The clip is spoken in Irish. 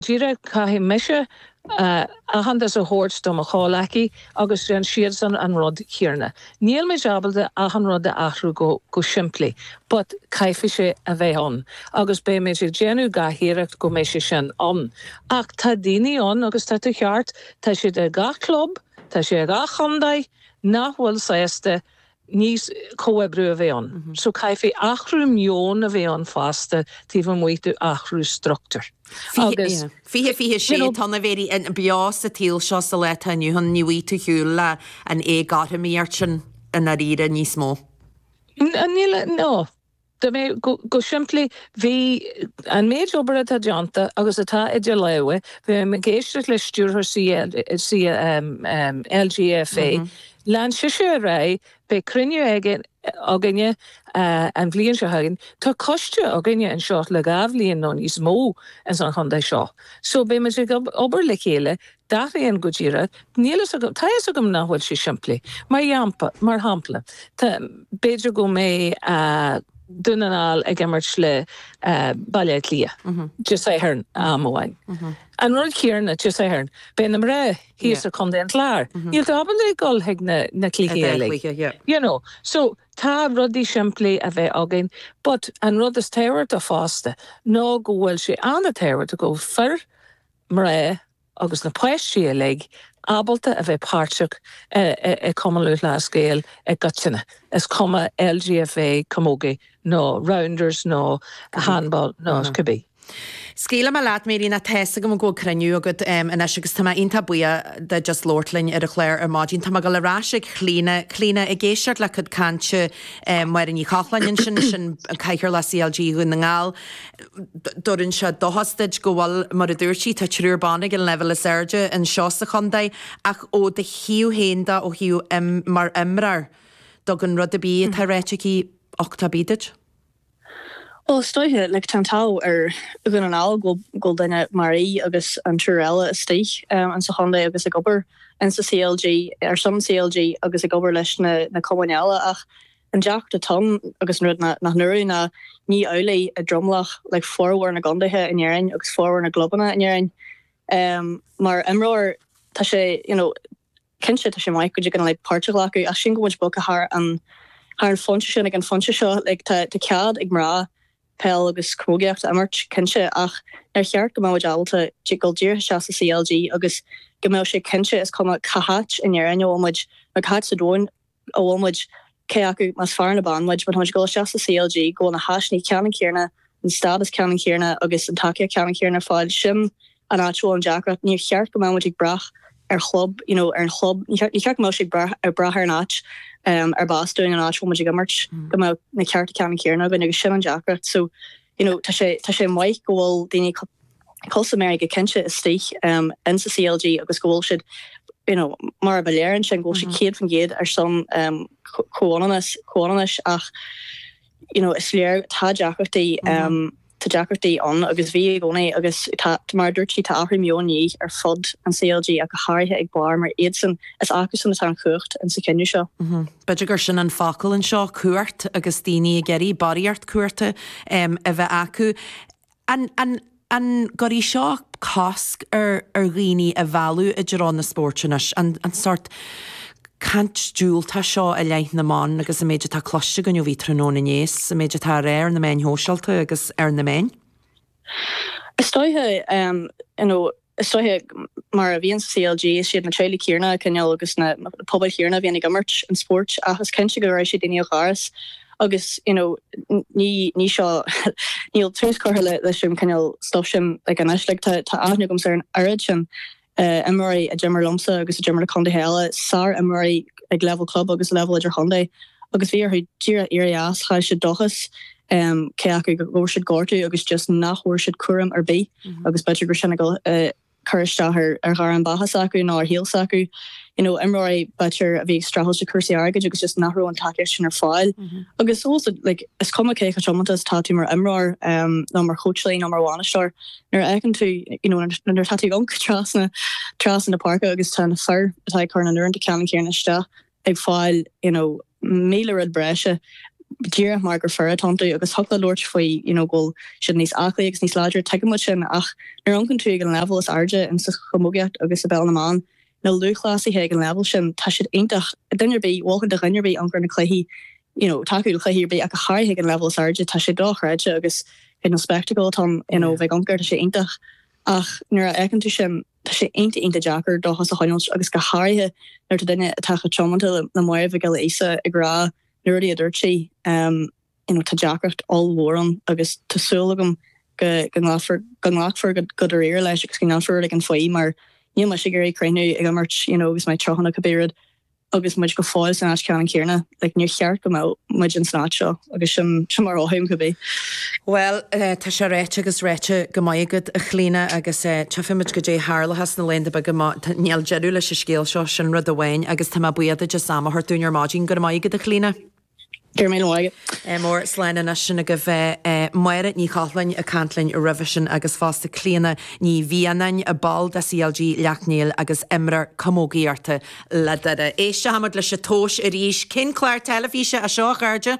díreach caithfidh mise aitheantas a thabhairt do mo chomhghleacaithe agus déanann siadsan an rud céarna. Níl muid ábalta achan rud a athrú go simplí but caithfidh sé a bheith ann agus beidh muid ag déanamh gach iarracht go mbeidh sé sin ann ach tá daoine ann agus tá tú ceart, tá siad i ngach club, tá sé i ngach contae nach bhfuil sásta leis comhoibriú a bheith ann. So caithfidh athrú meoin a bheith ann fosta taobh amuigh de athrú structúir. Agus Fiche fiche sé, you know. Tá na féaráilte sa tsaol seo sa lá atá inniu ann, ní bhfaighidh tú ar shiúl leis an éagothromaíocht sin i ndáiríre níos mó. Níl a, no. Dá mbeadh, go simplí, bhí an méid obair atá déanta agus atá idir lámha, bhí mé ag éisteacht le stiúrthóir LGFA, lean sise ar aghaidh, beidh cruinniú againne an bhliain seo chugainn, tá coiste againne anseo le dhá bhliain nó níos mó ins an chontae seo, so beidh muid ag obair le chéile D'athraíonn go díreach. Níl fhios agam. Tá fhios agam nach bhfuil sé simplí. Mar dheampa, mar shampla, tá, b'fhéidir go mbeidh Dún na nGall ag imirt le Baile Átha Cliath Dé Sathairn amháin. An rud céarna Dé Sathairn, beidh na mná thíos i Contae an Chláir. Níl tú ábalta ag dul chuig na cluichí uilig. You know. So, tá rudaí simplí a bheith againn but an rud is tábhachtaí fosta ná go bhfuil sé an-tábhachtach go bhfuil fir mná agus na páistí uilig ábalta a bheith páirteach i Cumann Lúthchleas Gael i gcoitinne, is cuma LGFA, Camogie nó Rounders nó Handball nó cibé. Scaoilfidh mé leat Mary, nó tá's agam go bhfuil cruinniú agat anois agus tá mé iontach buíoch díot as labhairt linn ar an chlár ar maidin. Tá mé ag dul ar ais ag Clíodhna. Clíodhna, ag éisteacht le cuid cainte Mary Ní Chochláin ansin, sin cathaoirleach CLG Dhún na nGall, dúinn anseo. Dóchas duit go bhfuil, mar a dúirt sí, tá triúr ban ag an leibhéal is airde anseo sa chontae ach ó do thaobh féin de, ó thaobh im, mar imreoir, dtugann an rud a bhí, atá ráite aici, uchtach ar bith duit. Bhuel, is dóiche, like, tá an t-ádh ar Dhún na nGall go bhfuil duine mar Mary agus an triúr eile istigh in sa chontae agus ag obair in sa CLG, ar son CLG agus ag obair leis na na cumainn eile ach, An deacracht atá ann, agus an rud nach ndúradh, ná ní amhlaidh i dtromlach, like, formhór na gcontaetha in Éirinn agus formhór na gclubanna in Éirinn. Mar imreoir tá sé you know cinnte tá sé maith go dtig an like páirt a ghlacadh ach sílim go bhfuil muid bogtha thar an thar an phointe sin ag an phointe seo like tá tá cead ag mná peil agus camógaíocht a imirt cinnte ach nár cheart go mbeadh muid ábalta dul díreach isteach sa CLG agus go mbeadh sé cinnte is cuma cá háit in Éirinn a bhfuil muid nó cá háit sa domhain a bhfuil muid, cé acu más fear nó bean muid, má táimid ag dul isteach sa CLG, go bhfuil na háiseanna ceannann céarna, an stádas ceannann céarna agus an tacaíocht cheannann céarna ar fáil. Sin an áit a bhfuil an deacracht. Níor cheart go mbeadh muid ag brath ar chlub, you know, ar an chlub, níor cheart go mbeadh sé ag brath ar an áit ar b'as dúinn an áit a bhfuil muid ag imirt go mbeadh na cearta ceannann céarna againn agus sin an deacracht. So. you know tá sé tá sé maith go bhfuil daoine cosúil le Máire cinnte istigh in sa CLG agus go bhfuil siad you know mar a ba léir ansin go bhfuil siad céad faoin gcéad ar son comhionannais comhionannais ach you know is léir tá deacrachtaí tá deacrachtaí ann agus bhí i gcónaí agus tá mar a dúirt sí tá athrú meoin de dhíth ar fud an CLG ach go háirithe ag barr mar iadsan is acusan atá an chumhacht ins an cinneadh seo. B'fhéidir gur sin an focal anseo, cumhacht, agus daoine ag iarraidh barraíocht cumhachta a bheith acu. An an gcuirfidh seo cosc ar ar dhaoine a mhealladh i dtreo na spóirt anois, an an sórt caint diúltach seo i leith na mban agus an méid atá cloiste againn ó bhí tráthnóna inné is an méid atá á rá ar na meáin shóisialta agus ar na meáin? Is dóiche you know. Is dóiche mar a bhíonn sa CLG, is iad na teaghlaigh chéarna cineál agus na pobail chéarna a bhíonn ag imirt an spóirt ach is cinnte go raibh sé daoine a chur as agus you know ní seo níl tús curtha leis an cineál stuif sin ach anois like tá tá aithne agamsa ar an oiread sin imreoirí a d'imir liomsa agus a d'imir le contaetha eile sárimreoirí ag leibhéal club agus leibhéal idirchontae agus bhí orthu díreach éirí as chaill siad dóchas um cé acu go bhfuair siad gortú agus just nach bhfuair siad cúram ar bith agus b'fhéidir go raibh sin ag cur isteach ar ar ghairm bheatha s'acu nó ar shaol s'acu. You know imreoirí b'fhéidir a bhí ag streachailt le cúrsaí airgid agus just nach raibh an tacaíocht sin ar fáil agus also like is cuma cé chomh tiomanta is atá tú mar imreoir um nó mar chóitseálaí nó mar bhainisteoir nuair a fheiceann tú you know nuair atá tú ag amharc trasna trasna na páirce agus tá na fir atá ag cur na n-uaireanta ceannann céanna isteach ag fáil you know míle rud breise díreach mar gur fir atá iontu agus thiocfadh leat labhairt faoi you know go bhfuil siad níos aclaí agus níos láidre tuigeann muid sin ach nuair a amharcann tú ag an leibhéal is airde in sa chamógaíocht agus i bpeil na mban na lúthchleasaithe ag an leibhéal sin tá siad iontach duine ar bith mholfainn do dhuine ar bith amharc ar na cluichí you know tacú le cluichí ar bith ach go háirithe ag an leibhéal is airde tá sé dochreidte agus you know spectacle atá ann you know bheith ag amharc air tá sé iontach ach nuair a fheiceann tú sin Tá sé iontach iontach deacair dóchas a choinneáilt agus go háirithe nuair atá duine atá chomh tiomanta le Máire Mhic Giolla Íosa ag rá na rudaí a dúirt sí. You know tá deacracht ollmhór ann agus tá súil agam go go nglacfar go nglacfar go go dáiríre leis agus go ndéanfar rud éigin faoi mar níl mise ag iarraidh críochnú ag imirt you know agus mé tríocha nó cibé rud agus muid go fóill san áit cheannann céarna, like níor cheart go mbeadh muid ins an áit seo agus sin sin mar mhothaím cibé. Bhuel, tá sé ráite agus ráite go maith agat, a Chlíodhna, agus tchífidh muid goidé a tharlóchas na laethanta beaga má tá, níl deireadh leis an scéal seo, sin rud amháin agus tá mé buíoch duit as am a thabhairt dúinn ar maidin, go raibh maith agat, a Chlíodhna. Diarmaid Ó Maoil. MR. Slán anois sin agaibh. Máire Ní Chochláin ag caint linn roimhe sin agus fosta Clíodhna Ní Mhianáin, ball de CLG Shleacht Néill agus imreoir camógaíochta le Doire. Éisteoimid leis an tomhas arís. Cén clár teilifíse é seo, a chairde?